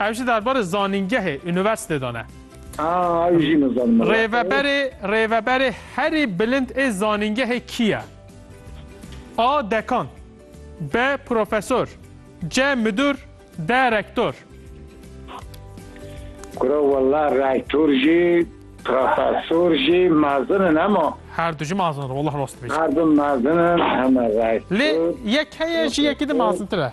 Ew jî derbarê zanîngehê, unîversîtê de ne. Aa, ew jî nizanim min re xwe. Rêveberê, rêveberê herî bilind ê zanîngehê kî ye? A, Dekan B, Profesor C, Midûr D, Rektor. Kura wela rektor jî, profesor jî mezin in hema. Her du jî mezin in, wela rast dibêjî. Her du mezin in, hema Lê rektor, yek heye ji yekî de profesor. mezintir e.